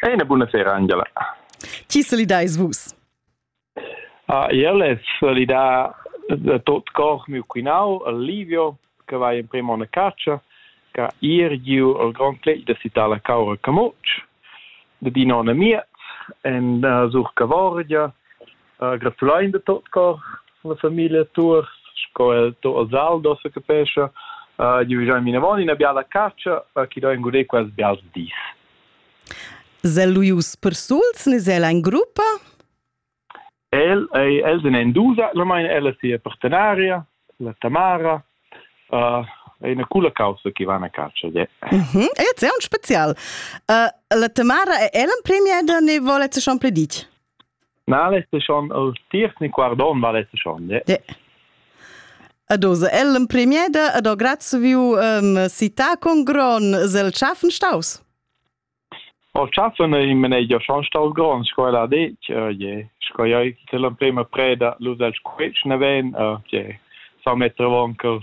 È una buona sera Angela. Chi solidais vus? Ah, io le solidà da tot cor miu quinau, Livio, che va in primo una caccia, che ir giu al Grand Clé da Citala Caura Camucci, da di nonna mia, en uh, sur Cavorgia, Gratulain da tot cor la famiglia Tuor sco el to els Aldo se capescha. Uh, giuvigiain vinavon ina biala catscha uh, chi do ingurer quels bials dis. Sel luius per suls, nes el ein gruppa? El, ei, els en Endusa, la meine ella sia partenaria, la Tamara, uh, è una cula causa che va a caccia. Mm -hmm. È un special. Uh, la Tamara è Ellen premier da ne vuole che schon predici? Na, lessa schon el tiers ni quart onn va lessa schon. Ja. Ed oz el l'empremier da ed ho grazia viu en città con gron zel schaffen staus. O schaffen in menegia schon staus gron sco el ha detg, uh, je. Sco ja till l'emprema preda lus el squetsch ne ven, uh, je. Sa metter vonkel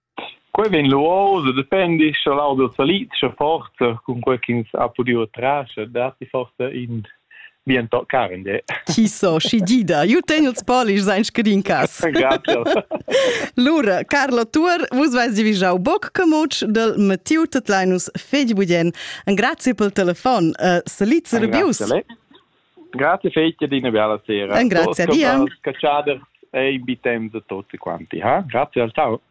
Quei vegn lu oz e dependi sche l'auto salid scha forsa cun quei ch'ins ha pudiu trar scha datti forsa in bien toc carn de. Chi so, schi gida. Ju tegn ils polischs ein scadin cas. Lura, Carlo Tuor, vus veis divigiau boc camutsch del Mattiu Tetlinus fegli Budien. Un grazie pel telefon. Uh, salid e rebius. Grazie fetg ed ina bella sera. Grazie a Dio. Caschader e in bi temps a tutti quanti, ha? Grazie al ciao.